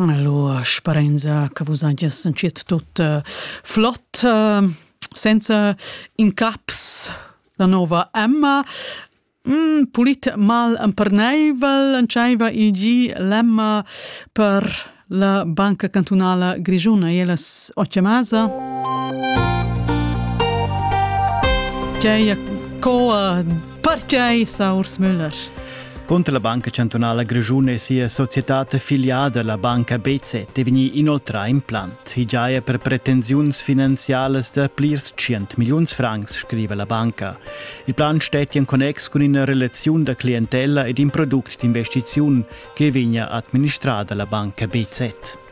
Allora sparenza che vus hagies entschiet tut uh, flott, uh, senza incaps la nova Emma. Mm, pulit mal emperneivel entscheiva igi l'Emma per la Banca Cantunala Grigiuna e las Ocemasa. C'è co a Pertgei Saurs Müller? Conter la Banca Chantunala Grischuna e sia societad affiliada, la Banca BC, è vegnì inoltrà implant. I giaja per pretensiuns finanzialas da plirs 100 milliuns francs, scriva la banca. Il plan stetti en connex cun ina relaziun da clientella ed in product d'investiziun che vegna administrada la Banca BZ.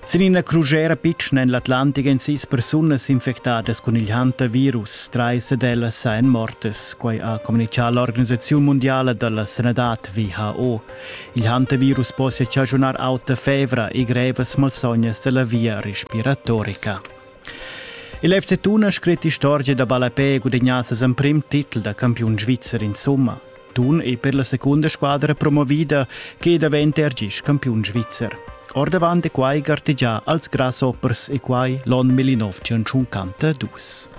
Sin ina crugera pitschna en l'Atlantic èn sis persunas infectadas cun il hantavirus. Trais d'ellas èn mortas. Quai ha communitgà l'organisaziun mundiala da la sanadad WHO. Il hantavirus possia chaschunar auta fevra e grevas malsognas da la via respiratorica. Il FC Tun ha scrit istorgia da ballapè e gudagnà ses emprim titel da campiun svizzer insumma. Tun ei per la secunda squadra promovida che daventa er gis campiun svizzer. Ordavant è quai gartegià als grasshoppers e quai l'on 1952.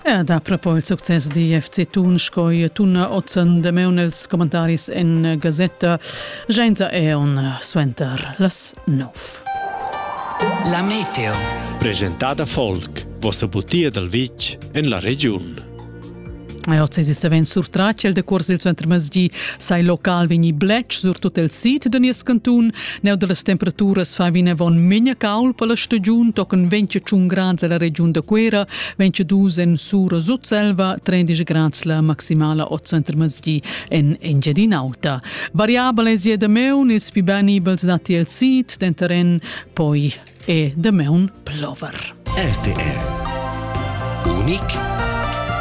E da propo il succes di FC Tun sco i Tun Ozen de meun els commentaris en gazetta Genza Eon suenter las 9. La meteo. Presentada folk, vossa butia dal vitg en la regiun. Ei oz savens surtratg el decuors il suenter masgi sai local vegni bletsch surtut el sid da nies cantun. Neu dallas temperaturas fa vinavon megna caul per la stagiun tochen 25 grads ella regiun da Cuera, 22 en Sura Sutselva, 30 grads la maximala oz suenter masgi en Engiadin'Auta. Variabel es je da meun ils più benibels nati el sid, denteren poi e da meun plover. RTR Unik